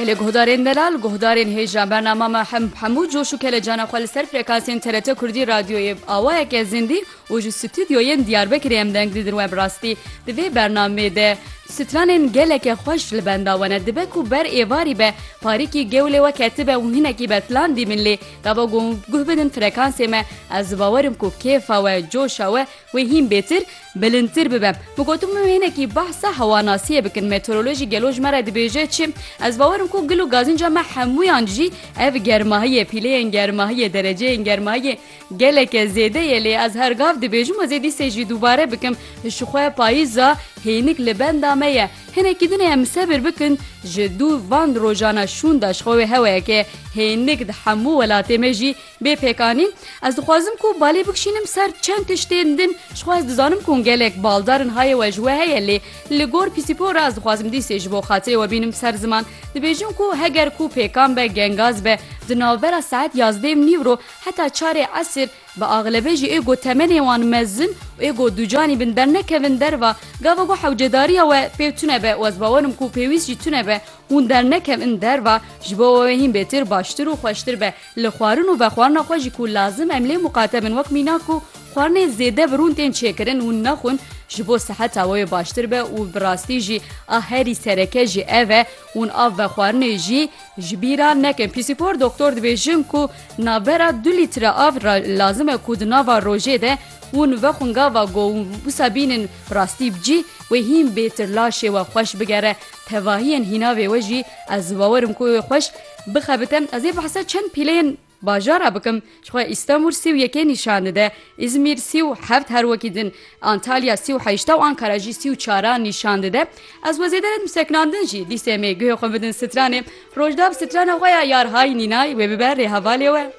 Gelê guhdarên delal, guhdarên hêja bernama me hemû coş û kelecana xwe li ser frekansên TRT Kurdî Radyoyê bi awayeke zindî û ji stûdyoyên Diyarbekirê em deng didin we bi rastî di vê bernamê de stranên geleke xweş li benda we ne dibe ku ber êvarî be parîkî gewlê we ketibe û hinekî betlan dîmin lê gava guh bidin frekansê me ez bawerim ku kêfa we coşa we Wê hîn bêtir, bilindtir bibe. Min got hûn hinekî behsa hewanasiyê bikin. Meteorolojî gelo ji me re dibêje çi? Ez bawer im ku gil û gazînca me hemûyan jî ev germahiyê, pîleyên germahiyê, dereceyên germahiyê geleke zêde ye lê ez her gav dibêjim ez ê dîsê jî dubare bikim ji xwe payîza hênik li benda me ye. Hinekî din em sebir bikin ji dû van rojana şûn de ji xwe wê heweyeke hênik di hemû welatê me jî Bê pêkanîn ez dixwazim ku balê bikişînim ser çend tiştên din ji xwe ez dizanim ku gelek baldar in hayê we ji we heye lê li gor pîsîpo re ez dixwazim dîsê ji bo xatirê we bînim ser ziman dibêjim ku heger ku pêkan be gengaz be di navbera saet yazdê û nîv ro heta çarê esir bi axlebe jî ê ku temenê wan mezin û ê ku ducanî bin dernekevin derva gava ku hewcedariya we pê tune be û ez bawer im ku pêwîst jî tune be hûn dernekevin derva ji bo we hîn bêtir baştir û xweştir be. Li xwarin û vexwarina xwe jî ku lazim em lê muqate bin wek mîna ku xwarinê zêde bi rûn tên çêkirin hûn nexwin ji bo siheta wê baştir be û bi rastî jî a herî sereke jî ev e hûn av vexwarinê jî ji bîra nekin. Pîsîpor doktor dibêjin ku navbera du lître av re lazim e ku di nava rojê de hûn vexwin gava ku wisa bînin bi rastî bi cî wê hîn bêtir laşê we xweş bigere tevahiyên hînavê we jî ez bawer im ku wê xweş Bixebite ez ê behsa çend pîleyên bajara bikim ji xwe Îstanbul sî û yekê nîşan dide, Îzmîr sî û heft her wekî din, Antalya sî û heşta û Ankara jî sî û çaran nîşan dide. Ez we zêde nedim sekinandin jî dîsê me guhê xwe bidin stranê. Rojdab strana xwe ya Yarhay Nînay wê bibe rê hevalê we.